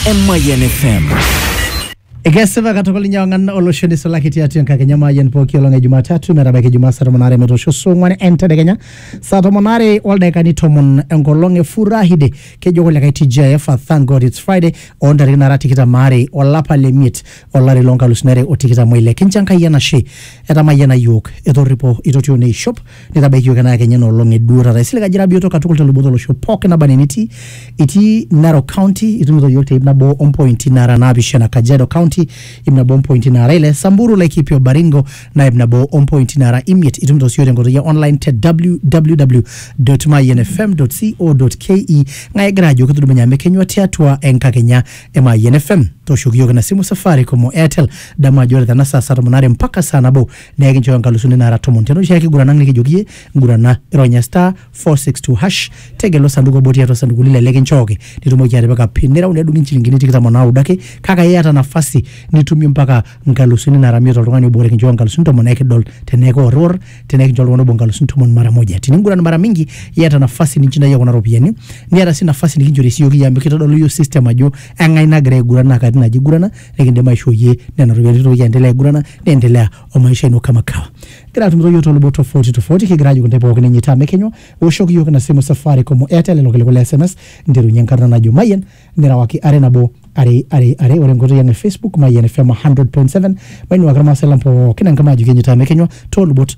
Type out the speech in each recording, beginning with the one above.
Emayian FM. Ekesipa katukul ninye ong'an olosho nisulaki tiatua enkakenya maayian pooki olong e Jumatatu metabaiki Jumaa saa tomon aare metoosho saa ong'wan entedekenya saa tomon aare oldaikani tomon enkolong e Furahide kejo kulikae TGIF a thank God it's Friday oo ntarikini nara tikitam aare olapa le miet olari loo nkalusuni are o tikitam oile kincho Enkai enashe etamayiana iyiook etorripo itotio neishop nitabaikioki ena kenya ena olong eduo taata isilig ajira bioto katukul telubot olosho pookin naba enaa enitii itii Narok County itumito iyiook te ip nabo ompointi nara naapishana Kajiado County ip nabo ompointi nara ile Samburu Laikipia o Baringo naa ip nabo ompointi nara imiet itumito siyiook tenkoitoi e online te www.mayianfm.co.ke ng'ae egira ajo kitudumunye amu ekenyua tiatua enkakenya e Mayian FM tooshoki iyiook ina simu Safaricom o Airtel damu ajo ore tena saa saa tomon aare mpaka saa nabo naa ekinchooyo inkalusuni naara tomon tiatua oshiake kiguran ang nikijoki iyie ngurana ironya star 462 hash tegelu osanduku obo tiatua osanduku lile likinchooki nitumoki atipika pin nireu nedung inchilingini tikitam o naudo ake kake iyata nafasi nitumie mpaka nkalusuni nara imiet oltung'ani obo ore kinchooyo nkalusuni tomon ekidol tenaa ekiworriwor tenaa ekincho oltung'ani obo nkalusuni tomon mara moja tininguran mara mingi iyata nafasi ninchindayie kuna ropiyiani niata sii nafasi nikinchori siiyioki iyie amu kitodolu iyiook system ajo eng'ae nagira aiguran naa katitin aja igurana nikindim aishoo iyie nena ropiyiani nitoki aendelea aigurana niendelea o maisha ino kama kawa gira atumito iyiook tolubot tofauti tofauti kigira ajoki intae pookin enye taa mekenywa ewoshoki iyiook ina simu Safaricom o Airtel lelo kiliku le SMS nterunye enkarna najo Mayian nirewaki are nabo are are are ore enkoitoi ang e Facebook Mayian FM 100.7 mainuaki irmaasai lang pookin enkima ajoki enye taa mekenywa toolubot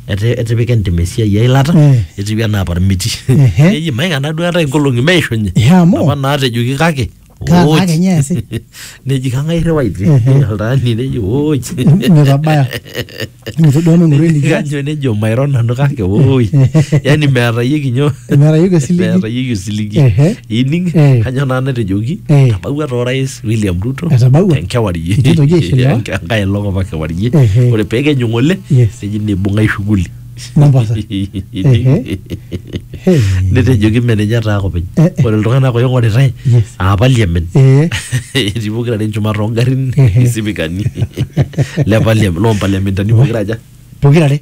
Ete- etipika entim esiai eilata Eh. etiu anaa parmiti Ehe. eji maikana duo eetae inkolong'i meishunye Ehe, amu. apa naatejoki kake Kaa- ooj. kake nye eesi. neji kang'ae irriwaiti Ehe. oltaani neji ooj Metabaya. Mitu duo meng'oru Neji enikias. kanyo nejo mairo nanu kake ooj yani meetayieki nyoo Meetayieki osiligi. meetayieki osiligi Ehe. ining Eh. kanyo naa natejoki Eh. tabawua toorais William Ruto Etabaua. enkewarie Enkitoki aishiliwa. Enke- enkae elong apa kewarie Ehe. ore pekenyu ng'ole Yes. neji nibung'ai shughuli Mombasa. Ehe. Hey. netejoki mme ninye taa kopeny Eh, eh. ore iltung'anak oing'oritae Yes. aa parliament Eh, etii pokira are enchumata ongarrin Ehe. isipikani le parliament loo mpaliamentani pokira aja pokirare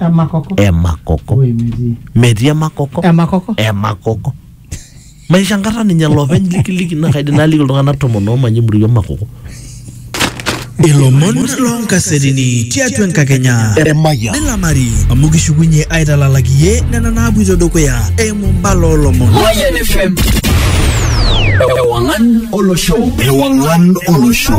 emakoko emakoko Oi, metii. metii emakoko emakoko emakoko maisho enkata ninye lopeny likiliki naa kaidim naliki iltung'anak tomon oomanya emurua emakoko Ilomon loonkasetini tiatua enkakenya Emayian. nilamari amu kishukunye aitalalaki iye nena naapuito dukuya eimu mbala oolomon. Mayan FM. Ewangan Olosho. Ewang'an olosho.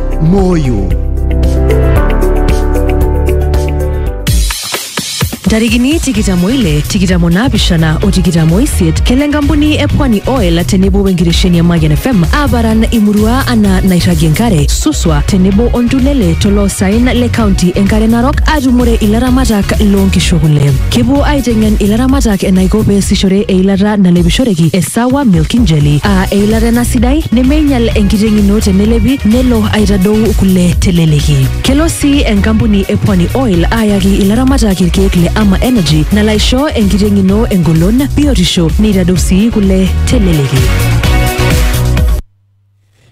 Moyo. ntarikini tikitamo ile tikitamo naapishana o tikitamo isiet kelo enkampuni e pwani oil tenebo wenkitesheni e mayian fm aaparan imurua anaa nairragie enkare suswa tenebo ontulele toloosaen le kaunti enkare narok aatumore ilaramatak loonkishu kule kepuo aiteng'en ilaramatak enaiko peesishore eilata nalepishoreki e sawa milking jelly aa eilata ena sidai nemeinyal enkiteng ino tenelepi nelo aitadou kule teleleki. Kelo sii enkampuni e Pwani Oil aayaki ilaramatak irkeek le Ama Energy nalo aisho enkiteng ino engolon, biotisho neitadou sii kule teleleki.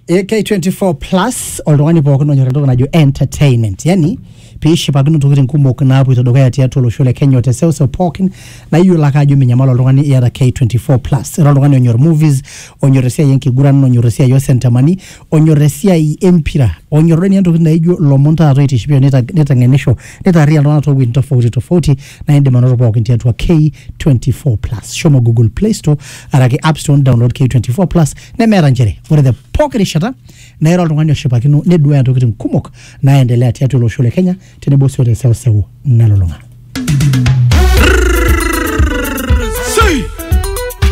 AK24 plus oltung'ani pookin onyor entoki najo entertainment yani pee ishipakino ntokitin kumok naapoito dukuya tiatua olosho le Kenya o te seuseu pookin naa iyiolo ake ajo minyamal oltung'ani iyata K24 plus. Ira oltung'ani onyor movies, onyor esiai enkiguran, onyor esiai oo sentemani, onyor esiai e mpira, onyor duo ninye ntokitin naijo ilomon taata oitishipisho nitag- niteng'enisho, nitaarriyian iltung'anak too wueitin tofauti tofauti naa iindim anoto pookin tiatua K24 plus. Shomo google play store araki app store ni download K24 plus nemeeta nchere ore te pooki rishata naa ira oltung'ani oshipakino neduaya ntokitin kumok naaendelea tiatua olosho le Kenya tenebo sii o te seuseu nalulung'a.